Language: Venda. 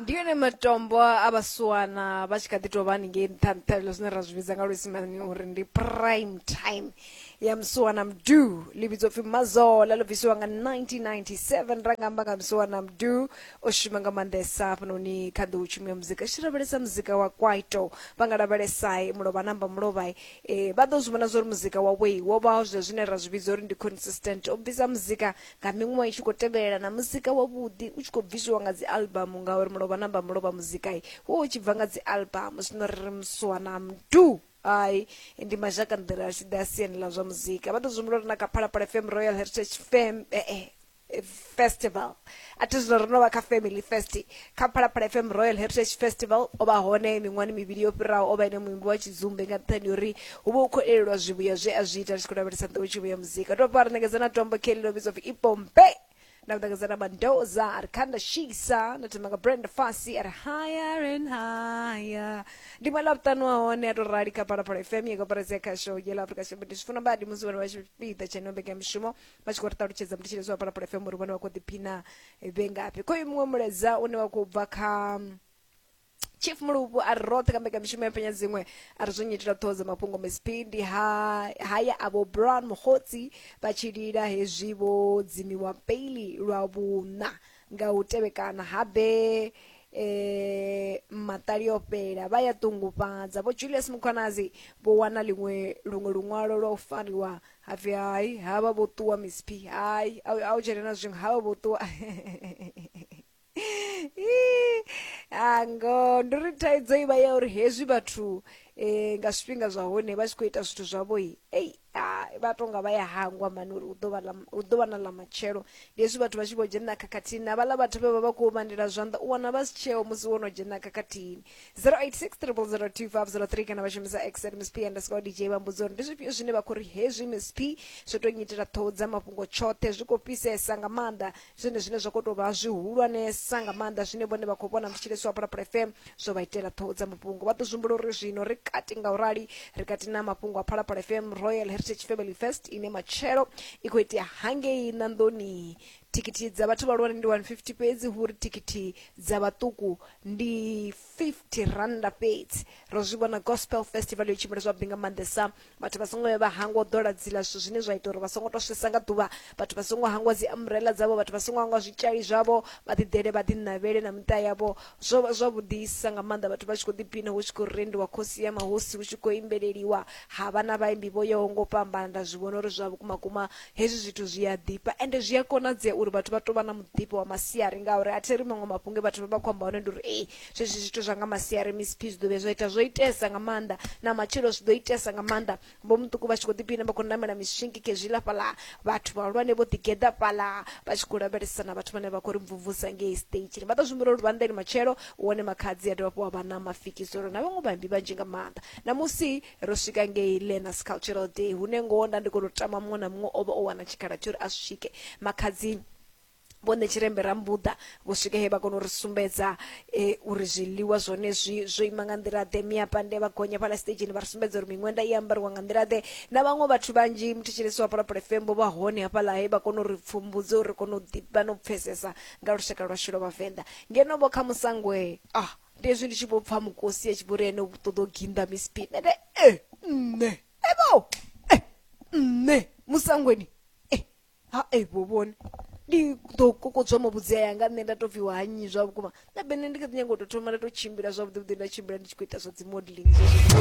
ndi yone matombo a vhasiwana vha tshi kha ḓi tou vha haningei nṱha nṱha ilo zwine ra zwi vhidza nga luisimani uri ndi prime time ya musiwana mdu ḽi vhidzwa pfhi mazola ḽo bvisiwa nga 1997 ra nga amba nga musiwana mdu o shuma nga maanḓesa hafhanoni kha ḓiu tshumi ya muzika tshi lavhelesa muzika wa kwaito vha nga lavhelesai mulovha namba mulovhai eh, vha ḓo zwi vhona zwa uri muzika wawei wo vha zwe zwine ra zwi vhidza uri ndi consistent o bvisa muzika nga miṅwaha i tshi khou tevhelela na muzika wavhuḓi u tshi khou bvisiwa nga dzi albamu ngauri mulovha namba mulovha muzikai wo u tshi bva nga dzi albamu zwino ri ri muswa na mdu ai ndi mazhaka nḓila a tshi ḓa siani ḽa zwa muzika vha ḓo zwimbula uri na kha phalaphala fm royal heritage fam eh, eh, festival a thi zwino ri no vha kha family fest kha phalaphala fm royal heritage festival o vha hone miṅwani mivhili yo fhiraho o vha ene muimbi wa tshidzumbe nga nṱhani ya uri hu vha hu khou elelwa zwivhuya zwe a zwi ita ri tshi khou lavhelesa nḓowetshumo ya muzika tou bva ri ṋekedza na tombo kelly ḽo vhidzwa pfi ipompe na u ṋekedza na mandoza a ri khanda shisa na thoma nga brand fasi a ri higher and higher ndi ṅwe ḽa vhuṱanu wa hone a tou rali kha phalaphala fm ya koperasi ya khasho yela afrika tshipembe ndi zwi funa badi musi vhone vha tshipiḓa tsheneo mbekanyamushumo vha tshi khou ri ṱalutshedza mutsheledzo wa palapala fm uri vhone vha khou ḓiphina vhe ngafhi khoyu muṅwe mulaedza une wa khou bva kha chief muluvhu a ri roṱhe ka mbekamishumo ya penya dziṅwe a ri zwo nyitela ṱhoho dza mafhungo msp ndi ha haya avho brown mukhotsi vha tshi lila hezwi vho dzimiwa peili lwa vhuṋa nga u tevhekana habe eh maṱali o fhela vha ya ṱungufhadza vho julius mukhwanazi vho wana liṅwe luṅwe luṅwalo lwa u fariwa ha pfi hai ha vha vho ṱuwa miss p hai a u dzhene na zwiṅwe ha vha vho ṱuwa ango ndi ri thaidzo i vha ya uri hezwi vhathu um nga zwifhinga zwa hone vha tshi khou ita zwithu zwavhoi ei vha tonga vha ya hangwa mani uri hu ḓo vha na ḽa matshelo ndi hezwi vhathu vha tshi vho dzhena khakhathini na vhaḽa vhathu vhe vha vha khou vhandela zwanḓa u wana vha si tsheo musi wo no dzhena khakhathini 0860002503 kana vha shumisa x at msp underscore dj vha mbudza uri ndi zwifhio zwine vha khou ri hezwi msp zwo tou nyitela ṱhoho dza mafhungo tshoṱhe zwi khou fhisesa nga maanḓa zwone zwine zwa khou tou vha zwihulwanesa nga maanḓa zwine vhone vha khou vhona ndi tshilesi wa phalaphala fm zwo vha itela ṱhoho dza mafhungo vha ḓo zwimbula uri zwino ri kati nga u rali ri kati na mafhungo a phalaphala fm royal heritage family fest ine matshelo i khou itea hangei ṋanḓoni Thikhithi dza vhathu vhahulwane ndi 150 fhedzi hu ri thikhithi dza vhaṱuku ndi 50 rannda fhedzi. Ro zwi vhona Gospel Festival yo tshimbila zwavhuḓi nga maanḓesa. Vhathu vha songo vhuya vha hangwa u ḓola dzila zwithu zwine zwa ita uri vha songo tou swesa nga ḓuvha. Vhathu vha songo hangwa dzi umbrella dzavho, vhathu vha songo hangwa zwitshali zwavho, vha ḓi ḓele vha ḓi ṋavhele na miṱa yavho. Zwo vha zwavhuḓisa nga maanḓa vhathu vha tshi khou ḓiphina hu tshi khou rendiwa Khosi ya Mahosi hu tshi khou imbeleliwa ha vha na vhaimbi vho yaho nga u fhambana nda zwi vhona uri zwa vhukuma kuma Hezwi zwithu zwi a ḓifha ende zwi a konadzea uri vhathu vha tou vha na muḓifho wa masiari ngauri a theri maṅwe mafhungo e vhathu vha vha khou amba hone ndi uri ei zwezwi zwithu zwa nga masiari Miss P zwi ḓo vhuya zwa ita zwo itesa nga maanḓa na matshilo zwi ḓo itesa nga maanḓa vho muṱuku vha tshi khou ḓipina vha khou namela miswingi khezwiḽa fhaḽa vhathu vhahulwane vho ḓigeḓa fhaḽa vha tshi khou lavhelesa na vhathu vhane vha khou ri mvumvusa ngei stage vha ḓo zwimbula uri vhanḓeni matshelo wone makhadzi a dovha fho wa vha na mafikizolo na vhaṅwe vhaimbi vhanzhi nga maanḓa na musi ro swika ngei learners cultural day hune ngoho nda ndi khou tou tama muṅwe na muṅwe o vha o wana tshikhala tsho ri a swike makhadzi vho nṋe tshirembe ra mbuḓa vho swika he vha kona u ri sumbedza e, uri zwiḽiwa zwone zwi zwo ima nga nḓila ḓe miapande vha gonya fhala stageni vha ri sumbedza uri miṅwenda i ambariwa nga nḓila ḓe na vhaṅwe vhathu vhanzhi muthetshelesi wa palapala fm vho vha hone hafhaḽa he vha kona u ri pfumbudza uri ri kone u ḓivha na u pfesesa nga lushaka lwashu lwa vhavenḓa ngeno vho kha musangwe ah ndi hezwi ndi tshi vho pfa mukosi a tshi vho ri ene u ṱoḓa u ginda miss p nende e eh, nṋe evo e eh, nṋe musangweni e ha e vho vhone ndi ḓo kokodzwa mabudzea yanga nṋe nda tou pfiwa ha nnyi zwa vhukuma na bene ndi kha ḓi nyanga u tou thoma nda tou tshimbila zwavhuḓi vhuḓi nda tshimbila ndi tshi khou ita zwa dzi modeling zwezwo